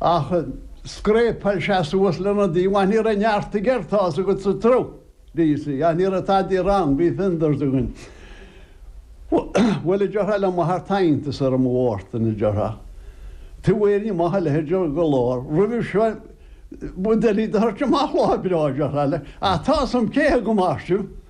Ach scréapáil sé suas lena dtaobh, Ní raibh neart aige air tá's agat sa tsruth, do you see, ach ní raibh tada wrong, bhí fenders againn. Bhuel, a dúirt sé le m'athair, tá iontas orm, a Mhártain, a dúirt sé, taobh amuigh ar ní maith a leithéid de lá, roimhe seo, bhuel, d'fheilfidh do thoirt amach lá breá, a dúirt sé leis, ach tá's a'm cé hé go maith sibh.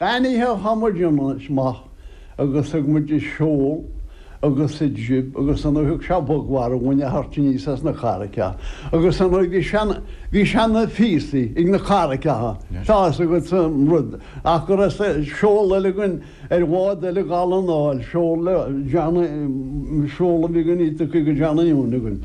An oíche chuaigh muid anois amach agus ag muid an seol agus an jib agus an oíche seo bog mharbh a bhain a thoirt aníos as na carraigeacha agus ar ndóigh bhí sean, bhí seana phíosaí ag na carraigeacha, tá fhios agat sa rud ach go raibh seol eile againn ar bhád eile Dhall an Áil, seol le John, seol a bhí againn Íotacaigh John Aoun againn.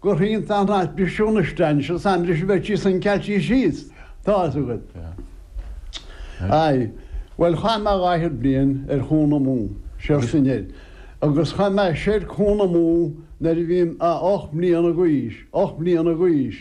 Go hiontach an traidisiún a staon seo san leis an bheirt sin san Ceaití síos, tá 'fhios agat. Aye. Bhuel, chaith mé dhá fhichead bliain ar Chuan Mó, soir is anoir, agus chuaigh mé soir Cuan Mó nuair a bhí mé ocht mbliana d'aois, ocht mbliana d'aois,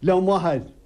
le m'athair.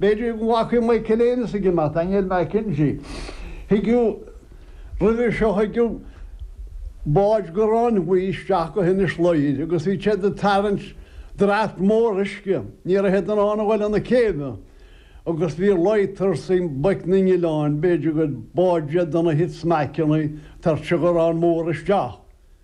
B'fhéidir go bhfaca Michael Ennis a gcineál, Daniel McKenzie. Thigeadh roimhe seo, thigeadh báid gráin bhuí isteach go hInis Ladhair agus bhí siad ag tarraingt draft mór uisce. Ní raibh siad in ann a dhul 'na céibhe agus bhí lighters ag boic na n-oileán, b'fhéidir gur báid iad de na smackanna ag tabhairt an ghráin mór isteach.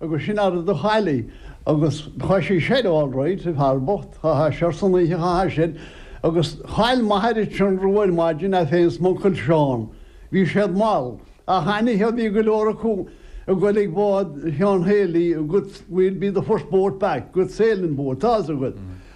Agus sin athair do Charlie. Agus chuaigh sé soir alright, an fear bocht, chuaigh sé soir san oíche, chuaigh sé sin. Agus chaill m'athair an t-ionradh ar maidin, é féin 's m'uncail Seán. Bhí siad mall. Ach anyhow bhí go leor acu ag goil ag bád Sheáin Healy, good, we'll be the first boat back, good sailing boat, tá 'fhios agat.